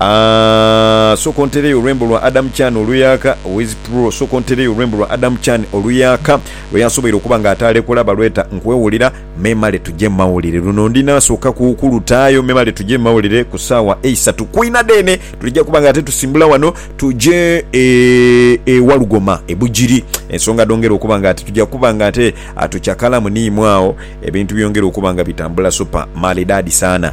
Aah sooka ontereyo olwembo lwa Adam Chan oluyaaka Wiz Pro sooka ontereyo olwembo lwa Adam Chan oluyaaka lweyansoboire okuba nga ataalekula balweta Nkwewulira memale tuje mumawulire luno ndi naasooka kulutaayo memale tuje mumawulire ku saawa eisatu kwina dheene tulija kuba nga ate tusimbula wano tuje e Walugoma e Bugiri ensonga dhongera okuba nga ate tuja kuba nga ate tucakalamu niimwo agho ebintu byongere okuba nga bitambula super maridadi sana.